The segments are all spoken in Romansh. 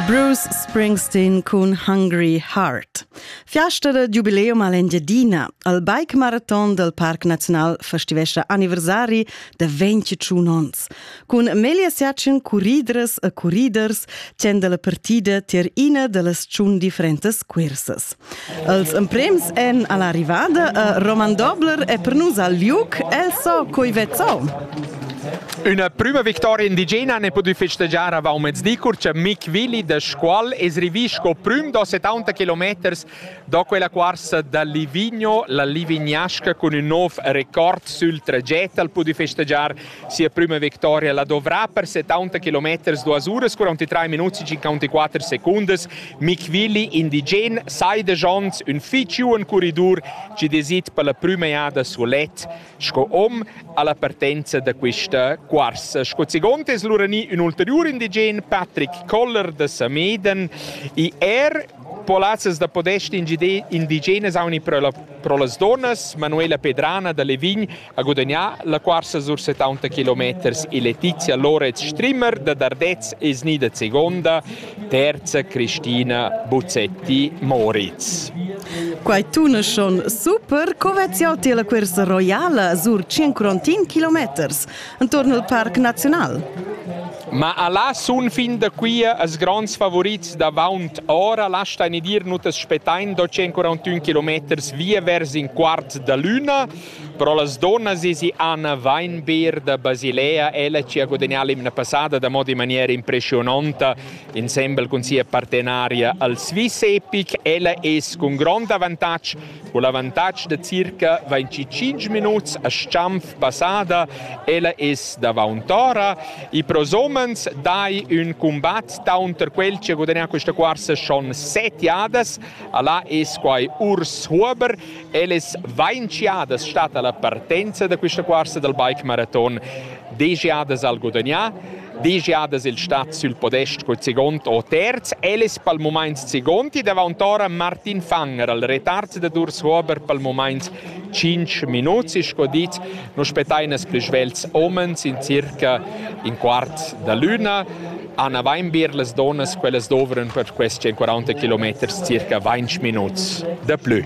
Bruce Springsteen cun Hungry Heart. Fiasta da giubileum all'Engiadina. Al bike marathon del Parc Nacional festivescia anniversari da 21 ons. Cun Melia Siatschen curridres e curriders tien della partida tier ina delle tschun differentes cursas. Els emprems èn alla rivada a Roman Dobler e per nus al liuc el so coi vezzo. Üna prüma victoria indigena ne pudü festegiar avant mezdi cur cha Mick Willi da Scuol es rivì sco prüm da 70 kilometers da quella cuorsa da Livigno, la Livignasca cun ün nov record sül traget al pudü festegiar Sia prüma victoria la dovrà per 70 km, 2 uras, 43 minuts e 54 secundas. Mick Willi, indigen, saidegiond ün fich juan corridor chi desit per la prüma jada sulet sco hom alla partenza da quista cuorsa. Sco segond es lura gnü ün ulteriur indigen, Patrick Koller da Sameden, e er polazzas da podest indigenas auni pro, la, pro las donas, Manuela Pedrana da Levign Ha gudagnà la cuorsa sur 70 kilometers e Letizia Loretz Strimmer da Dardez e snida segonda, terza Cristina Buzzetti-Moritz. Quai tuneschon super, co vezz jau ti la cursa roiala sur 100 kilometers intorno al Parc Naziunal? Ma alla sun fin da qui as grands favorits d'avaunt ora lastain dir nutas spettain do 141 km via vers in quart da luna Però las dunnas esi Anna Weinbier da Basilea, ella ci ha guadagnà l'imna passada da moda in maniera impressiononta insembel cun sia partenaria al Swiss Epic. Ella es cun grond avantatg, cun l'avantatg da circa 25 minuts a Stampf passada, ella es davaunt ora. I pros homens dai ün combat taunter quel ci ha guadagnà questa cuorsa schon set jadas. Alla es quai Urs Huber Ellas vainchiadas statta la partenza da quista cuorsa dal bike maraton degiadas al gudagnà, degiadas il stat sül podest col segond o terz, ellas pel mumaint segundi davant'ora Martin Fanger al retard da Durs Huber pel mumaint 5 minuts e sco dit nu spettain as plü svelts homens in circa in quart da l'üna Han avain bler las donnas quellas dovran per quest 140 kilometers circa 20 minuts de plü.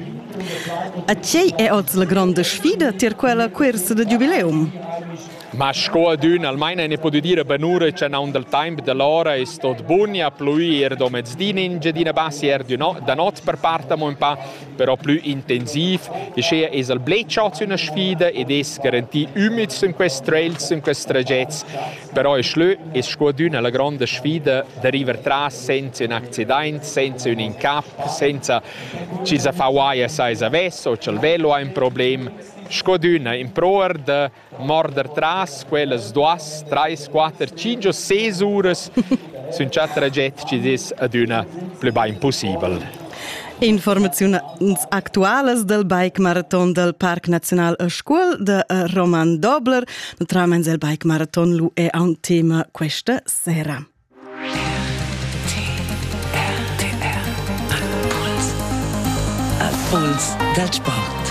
A tgei è oz la grande sfida tier quella cuersa de giubileum? Ma sco adün almaina ne podu dire benure che non dal temp dell'ora è stot bunia pluir do mezdi in Gedina Bassi er da not per part amo un pa però plü intensiv e schea es al blet chats üna sfida ed es garantì ümids in quest trails, in quest tragets, però es lö es scuadüna la gronda sfida da river tras senza ün accidaint, senza ün incap, senza chi sa fa uaia sai savess o cha'l velo ha ün problem, scuadüna in proer da morder tras quellas duas, trais, quatter, cinque o seis uras sun già traget chi'd es adüna plü bain pussibel. Informaziuns actualas del bike marathon del Parc Nacional a Scuol de Roman Dobler. Naturalment il bike marathon lu è un tema questa sera. A Puls dal sport.